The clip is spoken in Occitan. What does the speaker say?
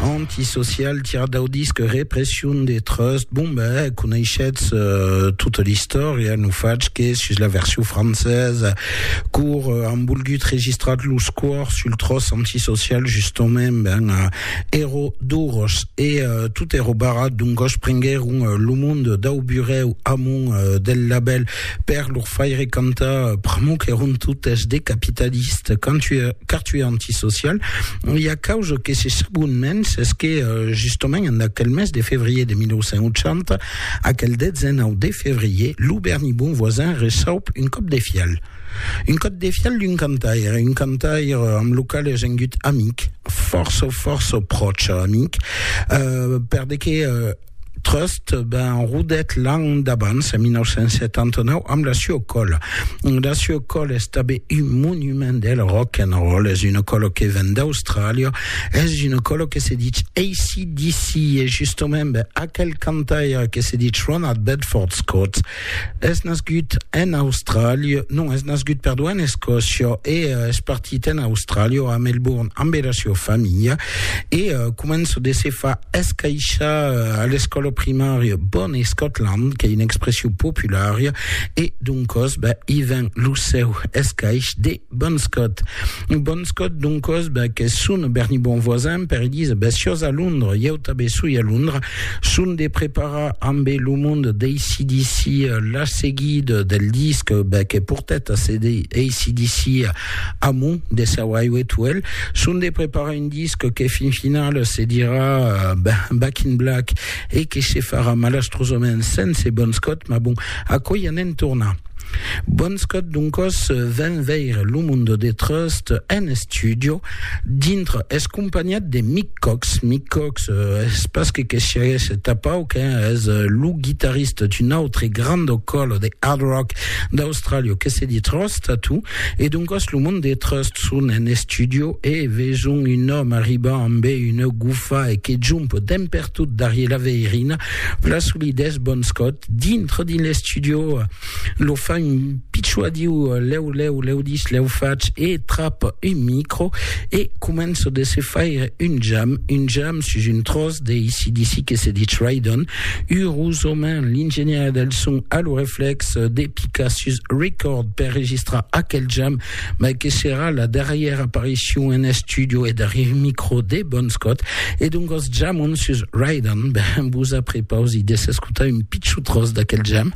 Antisocial, tirat dau disc Repression de Trust. Bon, ben, eh, coneishetz uh, tota l'istòria, no fach que sus la version francesa, cor uh, han volgut registrat los cors sul tros antisocial, justament, ben, uh, ero duros, e uh, tot ero barrat, donc goch prenguèron uh, lo monde dau burèu amont uh, del label Per lor faire cantar pr'amor qu'èron totes de capitalistes, car tu es antisocial, e a causa que se sabon mens, es que justament en aquel mes de fevrier de 1980, aquel 19 de fevrier, lo Berni Bon Voisin receup un còp de fial. Un còp de fial d'un cantaire, un cantaire amb lo qual es engut amic, fòrça, fòrça pròche amic, per de que Trust ben rodet l'an d'abans, en 1979, amb la Sue Cole. La Sue Cole es tabé un monument del rock and roll, es una colo que ven d'Austràlia, es una colo que se dit ACDC, e justament ben, aquel cantaire que se dit Ronald Bedford Scott, Es nascut en Austràlia, non, es nascut, perdó, en Escòcia e uh, es partit en Austràlia, a Melbourne, amb era sua familha e uh, comença de se fa escaixar uh, a l'escòla primària Bon Scotland, qu'ei una expression populària e doncòs, ben, i ven lo seu escaix de Bon Scott. Bon Scott, doncos, ben, qu'es son berni bon voisin, per Elisa, ben, siós a Londra, ieu tabé soi a Londra, son de preparar ambé lo mond d'ACDC la seguida del disc, ben, que portèt a CD, ACDC Amo, de Sir Highway to Hell, son de preparar un disc que fin final se dirà, ben, Back in Black, e que se farà malastrosament sense Bon Scott, mas bon, aquò i anem tornar. Bonscot doncos ven veire lo Mundo de Trust en estudio dintre es companhiat de Mick Cox. Mick Cox euh, es pas que que siaguesse tapau que es euh, lo guitarrista d'un autre grando colo de hard rock d'Australia que se dit Trust Tattoo e doncos lo Mundo de Trust son en estudio e veson un òme arribar amb una gufa e que jump demper tot darrier la veirina, la solidés bon scot, dintre dins l'estudio, lo fa un pitjò a diu, lèu, lèu, lèu dis, lèu fach, e trap un micro, e començo de se faire un jam, un jam sus un tròç de ACDC que se ditz Ride-On, urosament l'ingenièr del son a lo reflèx de picar sus Record per registrar aquel jam, mai que serà la darrièra aparicion en estudio e darrièr micro de Bon Scott, e doncas jamon sus Ride On, ben vos aprepausi de s'escotar un pichon tròç d'aquel jam.